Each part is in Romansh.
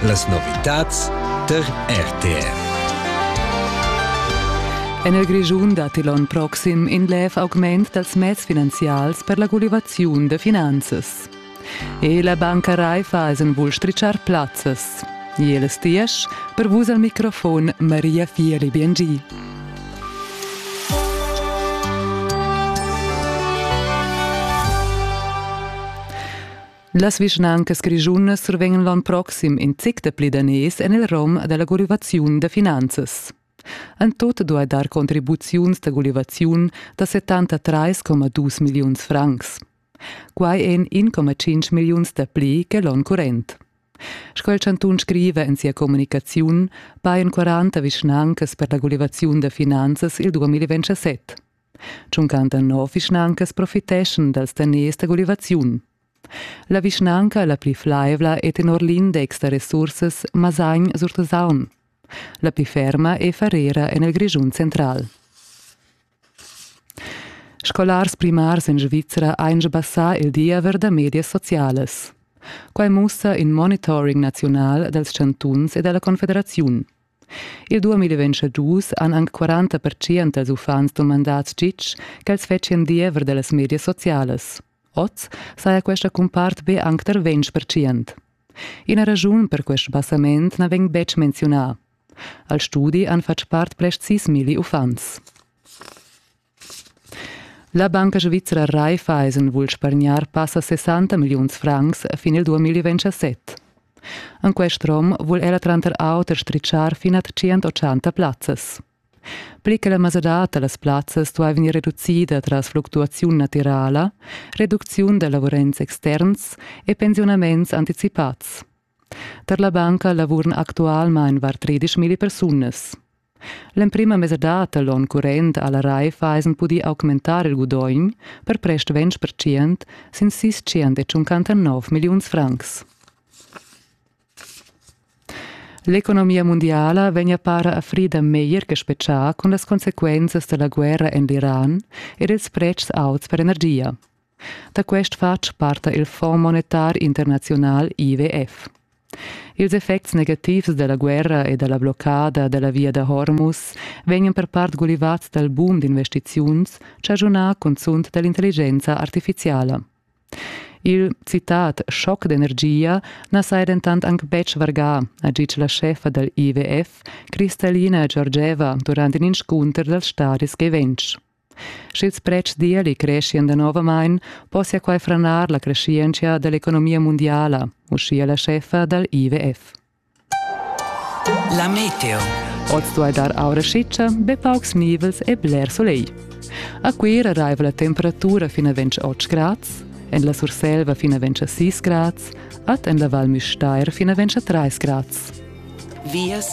Las novitads tar RTR. En il Grischun datti l'onn proxim in lev augment dals meds finanzials per la gulivaziun da finanzas. E la banca Raifa es en vul strichar plazzas. Jeles diesch, per vus al microfon Maria Fieli Biengi. Las vischnancas grischunas survegnan l'onn proxim in zic dapli daners en il rom da la gulivaziun da finanzas. En tut duai dar contribuziuns da gulivaziun da 73,2 milliuns francs. Quai èn 1,5 milliuns dapli che l'onn current. Sco il chantun scriva en sia communicaziun, pajan 40 vischnancas per la gulivaziun da finanzas il 2027. Tschuncan da nov vischnancas profiteschan dals daners da gulivaziun. La vischnanca la pli flaivla è tenor l'index da resursas Masagn sur Tusaun. La pli ferma è Farera en il Grischun central. Scolars primars en Svizra ein sbassà il diever da medias socialas. Quai mussa in monitoring naziunal dals chantuns e dalla Confederaziun. Il 2022 han anc 40 pertschient dals uffants dumandà tgitg ch'els fetschien diever da las medias socialas. Oz saja questa cumpart be anc tar ventg pertschient. Ina raschun per quest sbassament na vegn betg menziunà. Al studi han fatg part plest sis milli uffants. La banca svizra Raiffа Eisen vul spargnar passa 60 milliuns francs fin il 2027. En quest rom vul ella tranter auter stritschar fin a 180 plazzas. Pli che la mesadad da las plazzas duai vegnir reducida tras fluctuaziun natirala, reducziun da lavurands externs e pensiunaments anticipads. Per la banca lavuran actualmain var tredischmilli persunas. L'emprima mesadad da l'onn current ha la Raiffeisen pudì augmentar il gudogn per prest 20% sin sis milliuns francs. L'economia mundiala vegn a para a frida meglier che spetgà cun las consequenzas da la guerra en l'Iran ed ils pretschs auts per energia. Da quest fatg parta il Fonds monetar internaziunal IWF. Ils effects negativs dalla guerra e dalla bloccada dalla via da Hormuz vegnan per part gulivats dal boom d'investiziuns chaschunà cunzunt dall'intelligenza artificiala. Il citat schoc d'energia na saja dentant anc betg vargà, ha ditg la scheffa dal IWF, Kristalina Georgieva, durant in inscunter dals stadis gieventsch. Sch'ils pretschs d'ieli creschian danovamain, possia quai franar la creschientscha da l'economia mundiala, uschia la scheffa dal IWF. La meteo. Oz duai dar aura schitscha, be paucs nivels e bler solegl. A Cuira raiva la temperatura fin a 28 grads, en la Surselva fin a 26 grads, ad en la Val Müstair fin a 23 grads. vias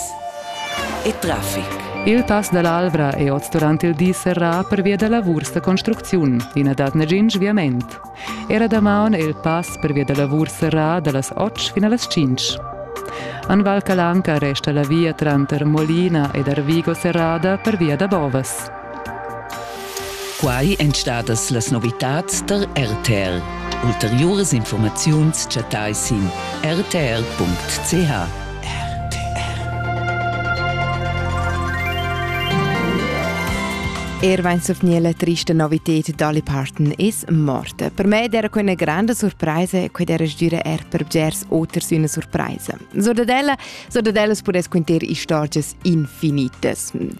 e traffic. Il pass dall'Alvra è oz durant il di serrà pervia da lavurs da construcziun. I na dat nagin sviament. Era damaun è il pass pervia da lavurs serrà dallas 8 fin las 5. An Val Calanca resta la via tranter Molina ed Arvigo serrada pervia da Bovas. Quai èn stadas las novitads tar RTR. Ulteriuras informaziuns chattai sin rtr.ch. Er wenn es auf nie eine triste Novität d'alli Parten ist, morte. Per me era quella grande sorpresa che era gira er per bgers oters una sorpresa. So da della, so da dellas podes quinter istorgias infinitas.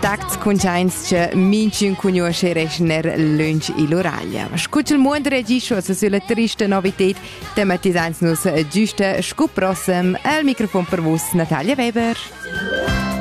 Tacts cuntains che minchün cugnuosche reschner lönch ill'uraglia. Scut il muond regischo sulla trista novited tematisains nus giusta scu prossem al microfon per vus Natalia Weber.